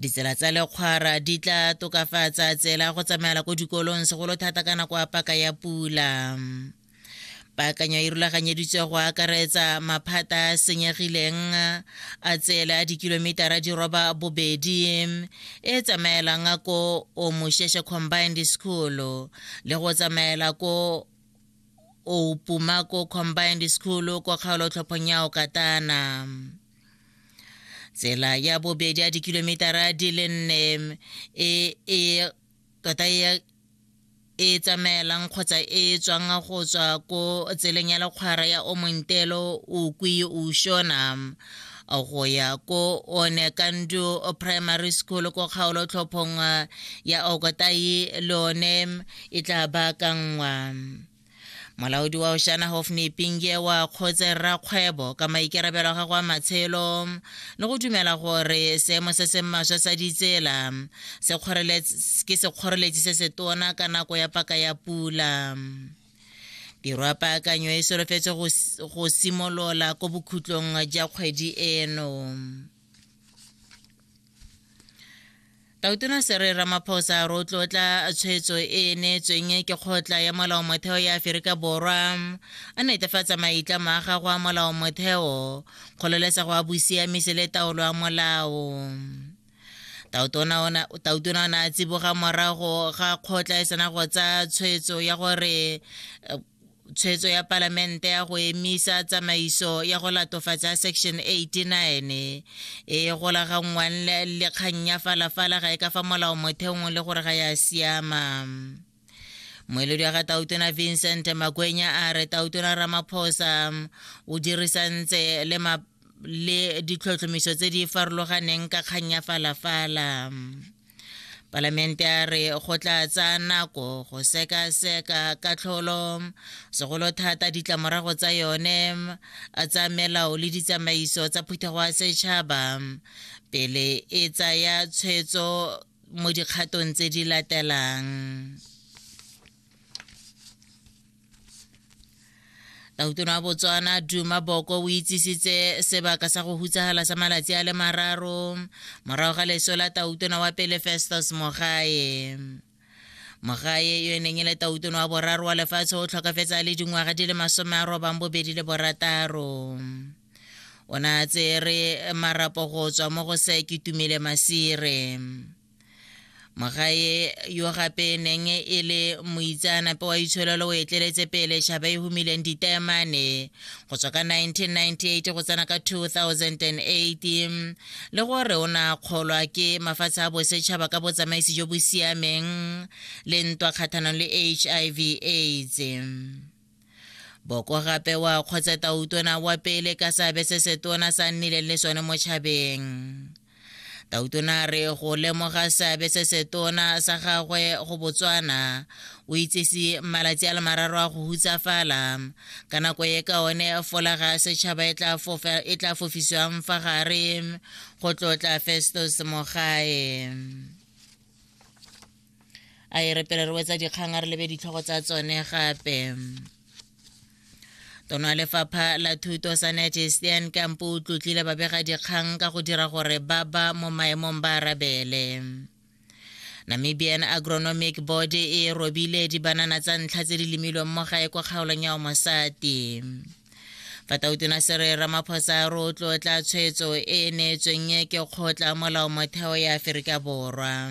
ditsela tsa lekgwara di tla tokafatsa tsela go tsamaela ko dikolong segolo thata ka nako ya paka ya pula paakanyo e rulaganyeditswe go akaretsa maphata a senyegileng a tsela a dikilomitara di roba bobedi e tsamaelang ko omosheshe combined school le go tsamaela ko opumako combined school ko kgaolotlhophong ya okatana tsela ya bobedi ya dikilometara di le nne e e tota e e tsamaelang kgotsa e tswang go tswa ko tseleng ya lekgwara ya omontelo o kwi o shona go ya ko one kandu primary school ko kgaolo tlhophong ya okotai le one e tla baakanngwa molaodi wa oshana hofne pinge wa kgotse rakgwebo ka maikerabelo a gago a matshelo le go dumela gore seemo se se maswa sa ditsela ke sekgoreletsi se se tona ka nako ya paka ya pula tiro ya paakanyo e solofetse go simolola ko bokhutlong ja kgwedi eno Tautona Sere Ramaphosa rotlotla tshwetso e e neetsweng ke kgotla ya molao motheo ya Aferika Borwa a netefatsa maitla ma gago a molao motheo kgololesego a bosiamisi le taolo ya molao tautona o ne a tsiboga morago ga kgotla e sena go tsaya tshwetso ya gore tshwetso ya palamente ya go emisa tsamaiso ya go latofatsa section 89 e golaganngwang le kgang ya falafala ga e ka fa molao motheong le gore ga ya siama moeledi wa ga tautona vincent makwenya a re tautona ramaphosa o dirisantse le ma le ditlhotlhomiso tse di farologaneng ka kgang ya falafala palamente a re go tla tsaya nako go sekaseka katlholo segolo thata ditlamorago tsa yone tsa melao le ditsamaiso tsa phuthego ya setšhaba pele e tsaya tshwetso mo dikgatong tse di latelang Tautona wa Botswana Duma Boko o itsisitse sebaka sa go hutsagala sa malatsi a le mararo morago ga leso la tautona wa pele Festus Mogae. Mogae yo e neng e le tautona wa boraro wa lefatshe o tlhokafetse a le dingwaga di le masome a robang bobedi le borataro. O ne a tsere marapo go tswa mo go se ke tumile masire. mogae yo gape neng e le moitseanape wa itshololo o etleletse pele shaba e humileng ditaemane go tswa ka 1998 go tsena ka 2008 le gore o na kgolwa ke mafatshe a bosetšhaba ka botsamaisi jo bo siameng le ntwa kgathanong le hiv aids Boko gape wa kgotse tautona wa pele ka seabe se setona sa nnileng le sone mo tšhabeng. Tautona a re go lemoga seabe se setona sa gagwe go Botswana o itsese malatsi a le mararo a go hutsafala ka nako e ka one folaga ya setšhaba e tla e fofiswang fa gare go tlotla Festus Mogae. a e re pele re wetsa dikgang a re lebe ditlhogo tsa tsone gape tona lefapha la thuto sanete stan kampo o tlotlile babegadikgang ka go dira gore ba ba mo maemong ba arabele namibian agronomic board e robile dibanana tsa ntlha tse di lemilweng mo gae kwa kgaolong ya omosati fatautona se re ramaphosa a rotlotla tshwetso e e neetsweng ke kgotla molao motheo ya aforika borwa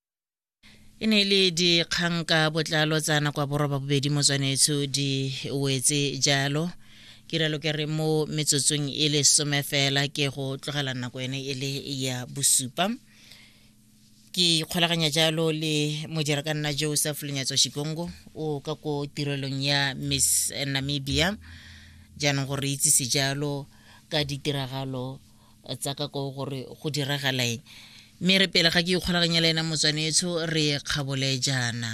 e ne e le dikgang ka botlalo tsa nako ya boroba bobedi motswanetsho di wetse jalo ke relo ke re mo metsotsong e le some fela ke go tlogela nako ene e le ya bosupa ke ikgolaganya jalo le mojera ka nna joseph lenyatso shikongo o ka ko tirelong ya miss namibia jaanong gore re itsise jalo ka ditiragalo tsa ka ko gore go diragala eng mme re pele ga ke ikgolaganya le ena motswanetsho re kgabole jaana